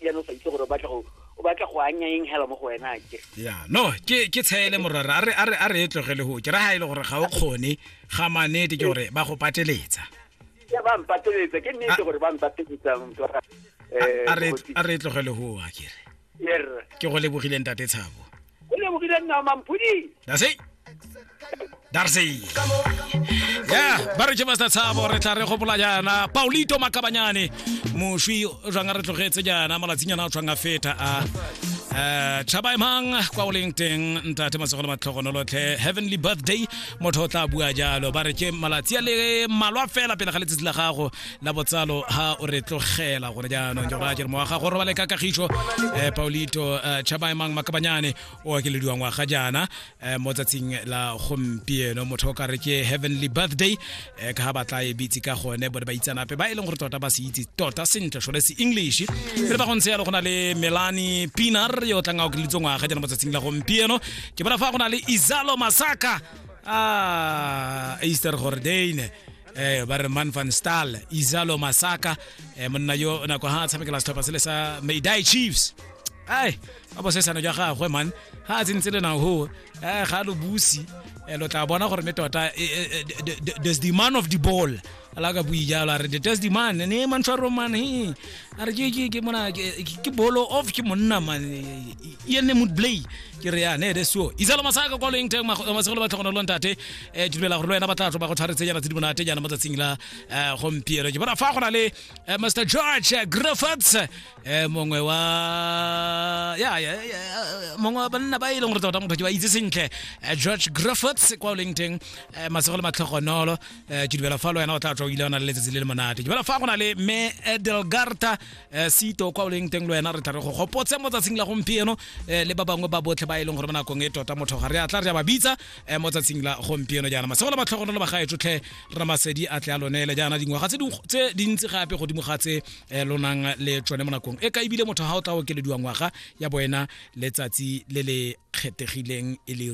jaanong sa itse gore o batla go o batla go anya eng hela mo go wena ke ya no ke ke tshele morara a re a re a re e tlogele go ke ra ha ile e gore ga o kgone ga manete ke gore ba go pateletsa ya ba mpateletsa ke nnete gore ba mpateletsa eh, a re e tlogele go a ke re ke go lebogile ntate tshabo o lebogile nna mampodi Darcy. Darcy. Yeah, ba re ke Master Tshabo re tla re gopola jaana Paulito Makabanyane moswi o jwang a re tlogetse jaana malatsing ana o tshwang a feta a Eh, tšhaba emang kwa o leng teng ntate matsogolo matlhogonolotlhe heavenly birthday motho o tla bua jalo ba re ke malatsi a le malwa fela pele ga letsatsi la gago la botsalo ha o re tlogela gore jaanong ke gore mo ga gore ba le ka kagišo eh paulito eh, chabaemang makabanyane o akelediwa ngwaga jaana eh, mo tsatsing la gompieno motho o ka re ke heavenly birthday eh, ka ga ba tla e bitse ka gone bone ba itsanape ba e leng gore tota ba se itse tota sentle sone se english pele ba go ntse yalo go na le melani pinar yo tlang a okeleditse ngwaga jaana mo tsatsing la gompieno ke bona fa go na le izalo masaka a ah, easter gordane eh ba re man van stal izalo masaka eh monna yo nako ha a tshamekela setlhopha se le sa maydai chiefs ai ba bosesano jwa gagwe man ga a tsentse le nago eh ga lo busi eh, lo tla bona gore ne tota eh, eh, eh, the- the- the- there's the man of the ball ala ka bui jalo a re the there's the man ne mantshwaro man he a re ke- ke- ke mona ke ke bolo of ke monna man e ene mood play ke re ya ne ere so isalo masaka kwa loeng teng masegolo ba tlhogono lontate um dumela gore le wena ba tla tlo ba go tshwaretsenyana tse di monate jaana mo tsatsing la um gompieno ke bona fa go na le eh, mr george eh, griffiths um mongwe wa ya ya ya, eh, mongwe wa banna ba e leng gore tota motho ke ba itse sentle eh, george griffiths kwa o leng teng eh, masego le matlhogonolo eh, ke dumela fa le wena o tla tswa o ile o na le letsatsi le le monate ke dumela fa go na le me edelgarta eh, sito kwa o leng teng le wena re tla re go gopotse mo tsatsing la gompieno eh, le ba bangwe ba botlhe ba e leng gore mo nakong e tota motho ga re a tla re a ba bitsa eh, mo tsatsing la gompieno jaana masego le batlhogonolo ba gae tsotlhe rra masedi a tle a lonele jaana dingwaga tse ding- tse dintsi gape godimo ga tse eh, lo nang le tsone mo nakong e ka ebile motho ga o tla okelediwa ngwaga ya boena letsatsi le le kgethegileng e le